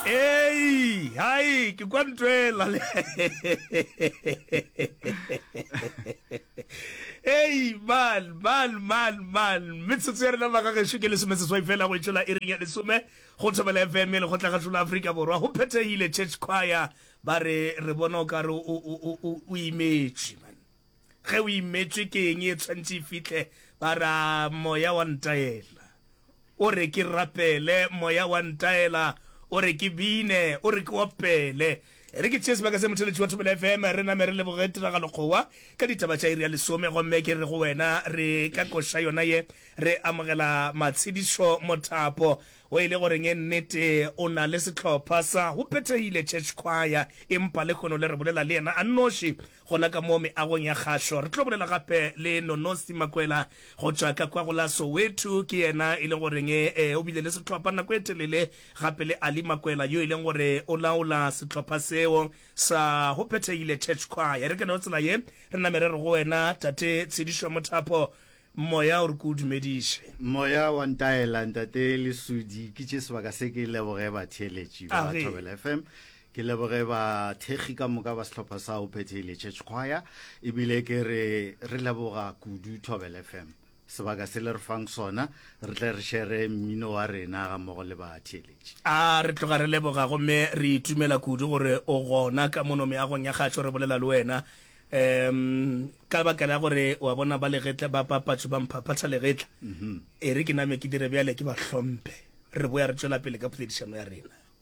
Ei, hai, ke kwa ntwela le. Ei, man, man, man, man. Metsotso ya rena ba ka gešo ke lesome seswai fela go itšola e reng ya lesome go thobela FM le go tlagašola Afrika Borwa. Go phethegile church choir ba re re bona o ka re o imetše man. Ge o imetšwe ke eng e tshwanetse e fihle? Ba ra, Moya wa ntaela. O re ke rapele. Moya wa ntaela. O re ke bine. O re ke opele. E re ke tšee sebaka se, motheletši wa Thobela FM, re name re leboge Tiragalokgowa ka ditaba tša iri ya lesome. Gomme ke re go wena, re ka koša yona ye, re amogela matshedišo, mothapo wo e lego reng. Nnete, o na le sehlopha sa go phethegile, Church Choir, empa lehono le re bolela le yena a nnoši. Gona ka mo meagong ya kgahlo, re tlo bolela gape le Nonosi Makwela go tšwa ka kwa go la Soweto. Ke yena e leng goreng e o bile le sehlopha nako e telele, gape le Ali Makwela yo e leng gore o laola sehlopha seo sa Ho Phethegile Church Choir. E re ke no tsela ye re name re re go wena Tate Tshedišo Mothapo, Moya o re ke o dumediše. Moya wa ntaela Ntate Lesudi, ke tše sebaka se ke leboge batheeletši ba Thobela FM. ke leboge bathekgi ka moka ba sehlopha sa o phethele church choir ebile ke re re leboga kudu tobel fm sebaka se le re fang sona re tle re shere mmino wa rena ga mmogo le batheeletši a re tloga re leboga gomme re itumela kudu gore o gona ka mono meagong ya gašo re bolela le wena um ka baka la gore wa bona ba legetla ba papatso ba mphaphatha legetla mhm. e re ke name ke dire bjale ke ba hlomphe re boya re tšwela pele ka poledišano ya rena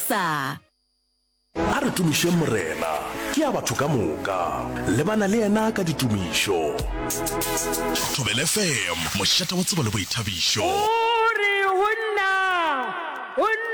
Sa. A re tumišeng Morena, ke ya batho ka moka, lebana le yena ka ditumišo. Thobel FM, mošate wa tsebo le boithabišo. O re ho nna, ho nna.